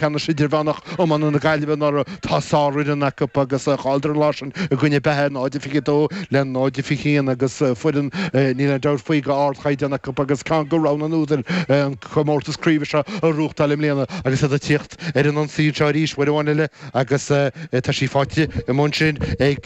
ceannais idirmheánach iomána na Gaillimhe anuraidh, tá sárfhoireann acu agus chailleadar an lá sin i gcoinne Beitheach, 0-22 le 0-21, agus foireann, níl aon dabht faoi, go ardchaighdeán acu agus ceann de rogha na n-údar an comórtas craoibhe seo a bhuachtáil i mbliana. Agus iad ag tíocht ar an ionsaí anseo arís uair amháin eile agus tá sí faighte amuigh ansin ag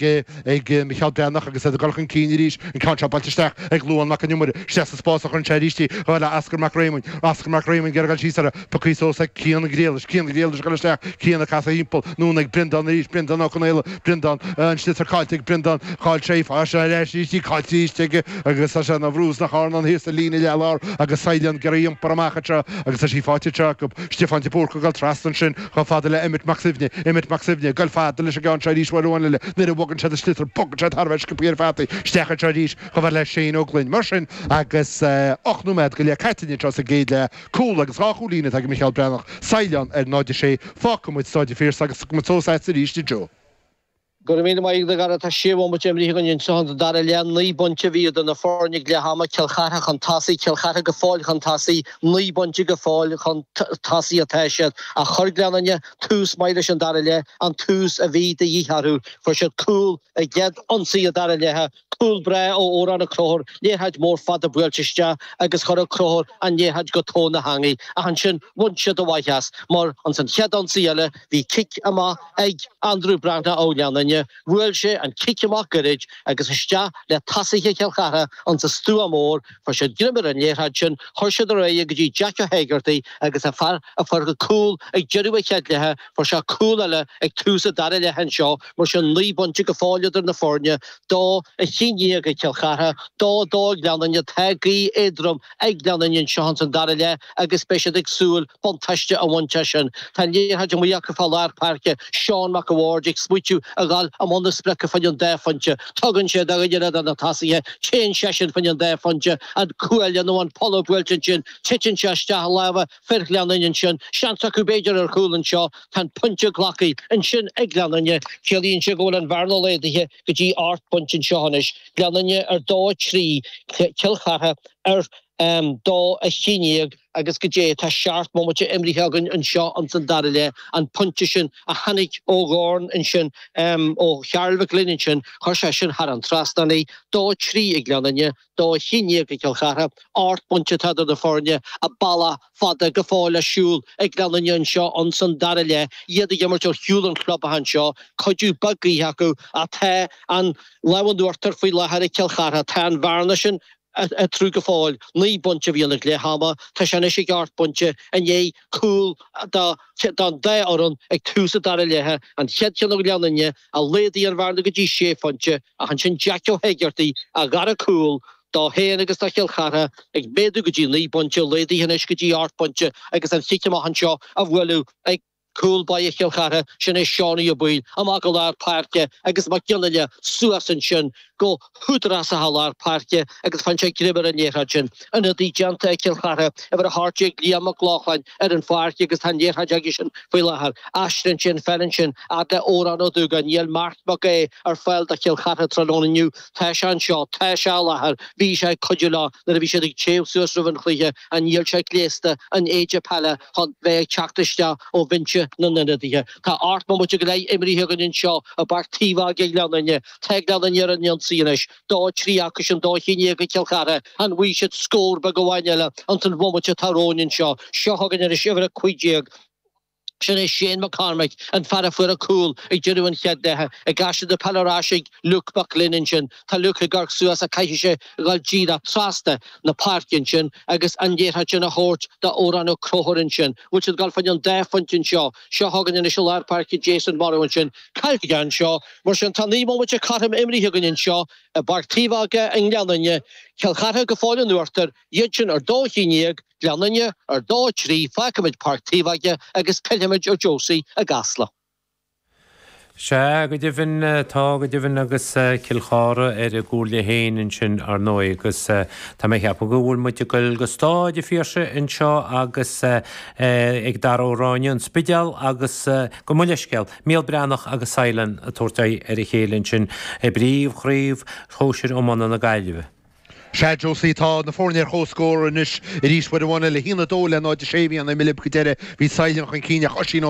Micheál Breathnach agus iad ag dul chun cinn arís, an ceann seo buailte isteach ag Luán Mac Con Iomaire, isteach sa spás a chur anseo arís go dtí a bhfuil Oscar Mac Réamoinn, Oscar Mac Réamoinn, ag iarraidh a ghoil síos orthu, Pioctha suas ag Cian Ghriallais, Cian Ghriallais a chur isteach, Cian ag casadh timpeall, anonn ag Breandán arís, Breandán Ó Conaola, Breandán, an sliotar caillte ag Breandán, cáill tréigthe, tá sé ar ais arís, í caillte arís aige agus tá sé ina bhrú is ina charnán thíos ar líne leath lár agus Saighleán ag iarraidh í a iompar amach anseo agus tá sí faighte anseo acu. Stiofán de Búrca ag dul trasna ansin chomh fada le Emmet Mac Suibhne, Emmet Mac Suibhne ag goil fada leis an gceann seo arís uair amháin eile nuair a bhogann siad an sliotar, bogann siad thar a bheith sciobtha ar fad í, isteach anseo arís chomh fada le Shane Ó Gloinn. Mar sin agus ocht nóiméad go leith caite anseo sa gcéad leath, Cúl agus dhá chúilín atá ag Micheál Breathnach Saighleán ar 0, 6 fágfaidh muid Staid an Phiarsaigh agus muid fós ait arís i dtreo. Go raibh míle maith agat a Mhac Dara tá sé bhomaite imrithe againn anseo an dara leath naoi bpointe a bhí idir na foirne ag leath ama Cill Chartha chun tosaigh Cill Chartha go fóill chun tosaigh naoi bpointe go fóill chun tosaigh atá siad ach chuir Gleann Fhinne tús maith leis an dara leath an tús a bhí de dhíth orthu fuair siad cúl i gcéad ionsaí an dara leath a Cúl breá ó Órán Ó Cróthair, liathróid mór fada buailte isteach agus chuir Ó Cróthair an liathróid go tóin na heangaí ach ansin bhain siad an mhaith as mar ins an chéad ionsaí eile bhí cic amach ag Andrew Breathnach ó Ghleann Fhinne, bhuail sé an cic amach gairid agus isteach le tosaithe Chill Chartha ins an stuá mór, fuair siad greim ar an liathróid sin, chuir siad ar aghaidh go dtí Jack O'Hegarty agus an fear a fuair cúl ag deireadh an chéad leatha. Fuair sé cúl eile ag tús an dara leath anseo, mar sin naoi bpointe go fóill idir na foirne, 2-11 ag Cill Chartha, 2-2 ag Gleann Fhinne. Tá gaoth éadrom ag Gleann Fhinne anseo ins an dara leath agus beidh siad ag súil buntáiste a bhaint as sin. Tá an liathróid amuigh acu fá lár páirce, Seán Mac a' Bhaird ag smaoitiú a dhul i mbun na sprice fá choinne an dá phointe. Tugann sé do dhuine de na tosaithe, téann seisean fá choinne an dá phointe, an cuaille nó an polla buailte ansin, titeann sé isteach i lámha fir Ghleann Fhinne ansin. Seans acu b'fhéidir ar chúl anseo. Tá an pointe glactha ansin ag Gleann Fhinne. Ciallaíonn sé go bhfuil an bhearna laghdaithe go dtí 8 bpointe anseo anois. Gleann Fhinne ar dó a trí, Cill Chartha ar dó a haon déag agus goidé tá seacht mbomaite imrithe againn anseo ins an dara leath. An pointe sin a tháinig ó dhorn ansin ó Chearl Mac Gloinn ansin chuir sé sin thar an trasnán í. Dó a trí ag Gleann Fhinne. dó a haon déag ag Cill Chartha. Ocht bpointe atá idir na foirne bealach fada go fóill le siúl ag Gleann Fhinne anseo ins an dara leath, iad ag imirt ó chúl an chlubtheach anseo cuidiú beag gaoithe acu ach tá an lámh in uachtar faoi láthair ag Cill Chartha. Tá an bhearna sin ag athrú go fóill. Naoi bpointe a bhí ann ag leath ama, tá sé anois ag ocht bpointe i ndiaidh cúl don dá fhoireann ag tús an dara leithe, an chéad cheann ó Ghleann Fhinne, a laghdaigh an bhearna go dtí sé phointe ach ansin Jack Ó hÉigeartaigh a dhara cúl dó féin agus do Chill Chartha ag méadú go dtí naoi bpointe laghdaithe anois go dtí ocht bpointe agus an chic amach anseo á bhualadh ag cúl báire Chill Chartha, sin é Seánie Ó Baoill, amach go lár páirce agus Mag Fhionnghaile suas ansin go húdarásach i lár páirce agus faigheann sé greim ar an liathróid sin. Ionadaí déanta ag Cill Chartha uimhir 18 Liam Mac Lochlainn ar an pháirc agus tá an liathróid aige sin faoi láthair. Aistríonn sé an pheil ansin fhad le Odhrán Ó Dúgáin. Níl Marc Mac Aoidh ar fáil do Chill Chartha tráthnóna inniu. Tá sé anseo. Tá sé i láthair. Bhí sé ag cuidiú leo nuair a bhí siad ag téamh suas roimh an chluiche ach níl sé gléasta in éide peile chun bheith ag teacht isteach ó bhinse na n-ionadaithe. Tá ocht mbomaite go leith imrithe againn anseo i bPáirc Taobhóige, Gleann Fhinne. Tá Gleann Fhinne ar an ionsaí anois. Dó a trí acu sin dó a haon déag ag Cill Chartha an bhfaighidh siad scór beag amháin eile ins an bhomaite atá romhainn anseo. Seo chugainn anois uimhir 15. Sin é Shane McCormick an fear a fuair an cúl ag deireadh an chéad leithe. Ag casadh na peile ar ais chuig Luke Mac Gloinn ansin. Tá Luke ag amharc suas ach caithfidh sé a dhul díreach trasna na páirce ansin agus an liathróid sin a thabhairt do Odhrán Ó Conchúir ansin. Bhfuil siad dhul a fháil an dá phointe anseo? Seo chugainn anois i lár páirce Jason Morrow ansin, caillte aige anseo, mar sin tá naoi mbomaite cothrom imrithe againn anseo i bPáirc Taobhóige i nGleann Fhinne, Cill Chartha go fóill in uachtar, iad sin ar dó a haon déag, Gleann Fhinne ar dó a trí, fágfaimid Páirc Taobhóige agus pillfimid ar Josie i gCasla. Sea, go deimhin tá, go deimhin, agus Cill Chartha ar a gcomhairle féin ansin, ar ndóigh, agus tá mé a cheapadh go bhfuil muid ag goil go Stáid a' Phiarsaigh anseo agus ag Dara Ó Ráinne an Spidéal agus, gabh mo leithscéal, Mícheál Breathnach agus Saighleán ag tabhairt aghaidh ar a chéile ansin i bpríomhchraobh shóisir iomána na Gaillimhe. Sea, Josie, tá na foirne ar comhscór anois arís, Mhuire Mháine le haon a dó le 0, 6 a bhí mé libh go deireadh, bhí Saighleán chun cinn ach Oisín Ó